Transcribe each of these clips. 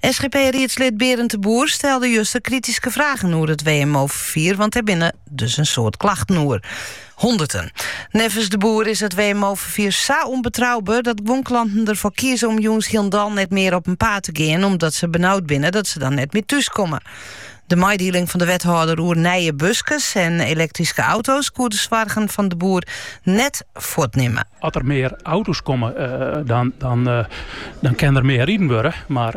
SGP-riedslid Berend de Boer stelde juster krityske fragen oer it WMO-ferfier, want der binne dus in soad klachten oer. Honderten. Neffens de Boer is it WMO-ferfier sa ûnbetrouber dat guon klanten derfoar kieze om jûns hielendal net mear op in paad te gean, omdat se benaud binne dat se dan net mear thús komme. De meidieling fan de wethâlder oer nije buskes en elektryske auto's koe de soargen fan de Boer net fuortnimme. As der mear auto's komme, dan dan dan kin der mear riden wurde. Mar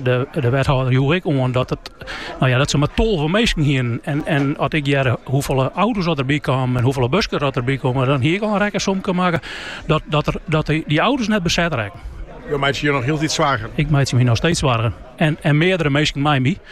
de wethâlder joech ek oan dat it no ja dat se mar tolve minsken hienen. En as ik hearde hoefolle auto's dat der by kamen en hoefolle buskes dat der by kamen, dan hie ik al in rekkensomke makke dat dy auto's net beset rekken. Jo meitsje jo noch hieltyd soargen? Ik meitsje my noch steeds soargen en meardere minsken mei my.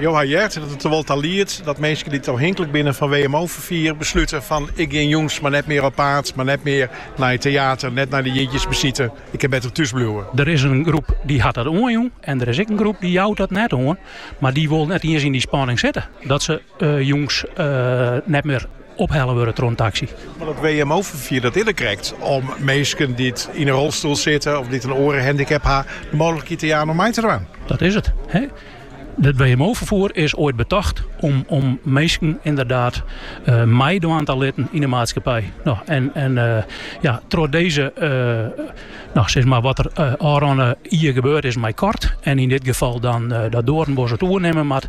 Jo ha heard dat it der wol ta liedt dat minsken dy't ôfhinklik binne fan WMO-ferfier beslute fan, ik gean jûns mar net mear op paad, mar net mear nei it teater, net nei de jierdeisbesite, ik kin better thús bliuwe. Der is in groep dy't hat dat oanjûn en der is ek in groep dy't jout dat net oan, mar dy wol net iens yn dy spanning sitte dat se jûns net mear ophelle wurde troch in taksy. Mar dat WMO-ferfier dat is der krekt om minsken dy't yn in rolstoel sitte of dy't in oare handicap ha de mooglikheid te jaan om mei te dwaan. Dat is it. It WMO-ferfoer is oait betocht om minsken ynderdaad meidwaan te litten yn de maatskippij en en ja troch dizze no sis mar wat der ôfrûne jier gebeurd is mei Kort en yn dit gefal dan dat Doornbos it oernimme moat.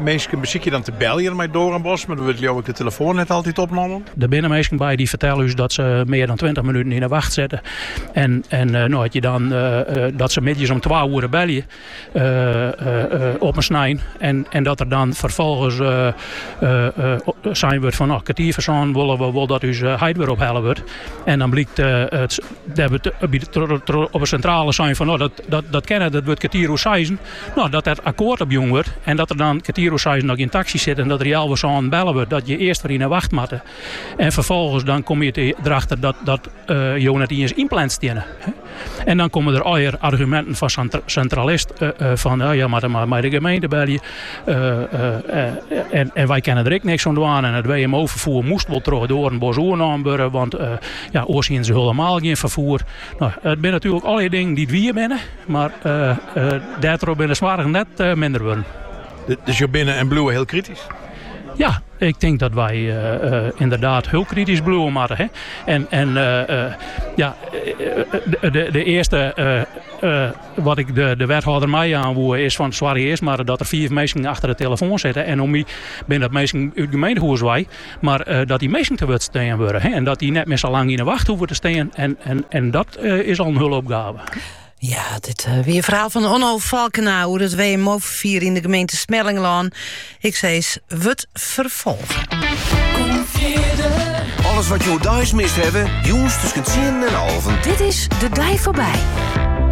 Minsken besykje dan te beljen mei Doornbos, mar der wurdt leauwik de telefoan net altyd opnommen. Der binne minsken by dy't fertelle ús dat se mear dan tweintich minuten yn 'e wacht sette en no ha je dan dat se middeis om twa oere belje op in snein en dat der dan ferfolgens sein wurdt fan no kertier foar sânen wolle wy wol dat ús heit wer ophelle wurdt en dan blykt dêr wurdt op 'e sintrale sein fan no dat kin net dat wurdt kertier oer seizen. No, dat dêr akkoart op jûn wurdt en dat der dan kertier oer seis noch gjin taksy sit en dat der ja healwei sânen belle wurdt dat je earst wer yn 'e wacht moatte. En ferfolgens dan komme je derachter dat dat jo net iens ynpland stiene. En dan komme der allegear arguminten fan sa'n sintralist fan jo moatte mei de gemeente belje en wy kinne der ek niks oan dwaan en it WMO-ferfoer moast wol troch Doarnbos oernommen wurde want ja oars hiene se hulemaal gjin ferfoer. It binne natuerlik allegear dingen dy't wier binne, mar dêrtroch binne de soargen net minder wurden. Dus jo binne en bliuwe hiel kritysk? Ja, ik tink dat wy ynderdaad hiel kritysk bliuwe moatte. En ja, de earste wat ik de wethâlder meijaan woe is fan soarge earst mar dat der fiif minsken achter de telefoan sitte. En om my binne dat minsken út it gemeentehûs wei. Mar dat dy minsken te wurd stean wurde en dat dy net mear sa lang yn 'e wacht hoege te stean. En, en, en dat is al in hulle opgave. Ja, dit uh, wie it ferhaal fan Onno Falkena oer it WMO-ferfier yn de gemeente Smellingerlân. Ik soe sizze, wurdt ferfolge. Alles wat jo deis mist hawwe, jûns tusken 10 en alven. Dit is De Dei foarby.